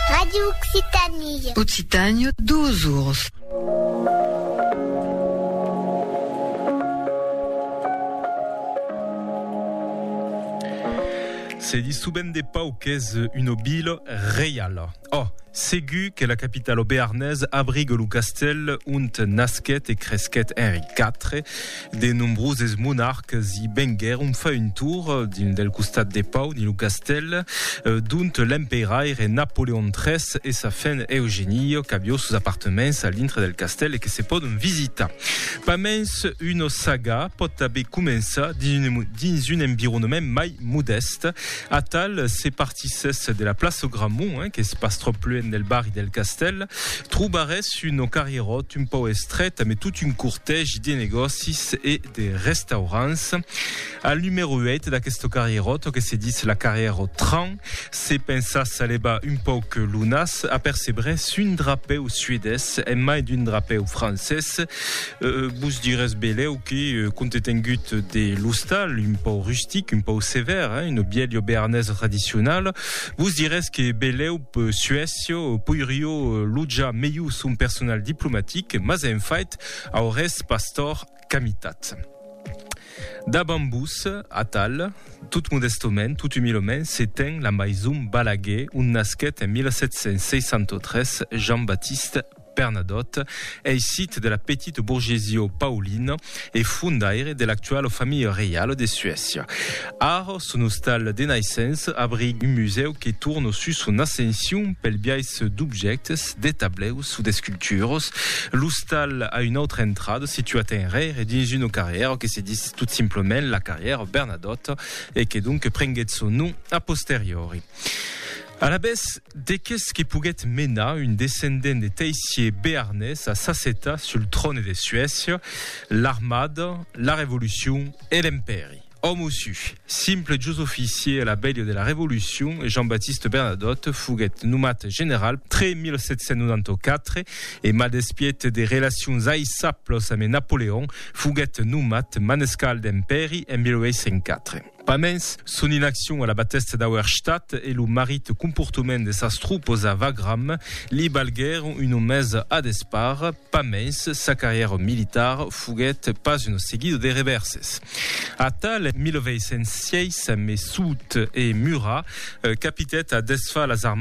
Radio Occitanie. Occitània, duas oras. Se dit souvent de Pau qu'es una vila reiala. Oh, segur que la capitala bearnaise abriga lo castèl ont nasquèt e cresquèt Henri IV, De nombroses monarques i venguèron far un tour dins del costat de pau dins lo castèl d'ont l'emperaire Napoleon iii e sa fen Eugénie qu'avió sos apartements a l'intre del castèl e que se pòdon visitar. Pas mens una saga pòt tanben començar dins un environament mai modèst. Atal se Si s'es de la plaça Gramont, eh, qu'es pas tròp luènh del barri del Castèl, trobarès un o carrieròt un pauc estret ame tot un cortègi de negòcis e de restaurants. Al numèro 8 d'aquesto carrieròt, o que se ditz la carrièra au train, se pensas a levar un pauc lo nas, apercebrès un drapèu suedés en mai d'un drapèu francés. Vos dirés belèu que compte tengut de l'ostal, un pau rustic, un pau sevèr, una bièlha bearnesa tradicionala, vos dirés que belèu Suècia poirió lotjar melhor son personal diplomatic, mas en fait aurés pas tòrt qu'a mitat. Davant vos, atal, tot modèstament, tot umilament, se ten la maison Balaguer, ont nasquèt en 1763 Jean-Baptiste Bernadotte ei sit de la petite bourgesie paulina e fondaire de l'actuala familha reiala de Suècia. Ara, son ostal de naissença abriga un musèu que torna sus son ascension pel biais d'objèctes, de tableus o d'esculturas. L'ostal a una autra entrada situat enrere dins una carrièra que se ditz tot simplament la carrièra Bernadotte e que donc prenguèt son nom a posteriori. Alavetz, de qu'es que poguèt menar un descendent de teissier bearnés a s'assetar sul tròne de Suècia, l'armada, la revolucion e l'empèri. Òme o su, simple jos oficier a la bèlha de la revolucion, Jean-Baptiste Bernadotte foguèt nomat general tre 1794 e mal despiet de relacions aisablas ame Napoleon, foguèt nomat manescal d'empèri en 1804. Pas mens, son inaccion a la batèsta d'Auerstadt e lo marit comportament de sas tropas a Wagram li balguèron una mesa a despart. Pas mens, sa carrièra militar foguèt pas una seguida de revèrses. Atal, en 1806, a Messoud e Murat, capitèt a desfar las armadas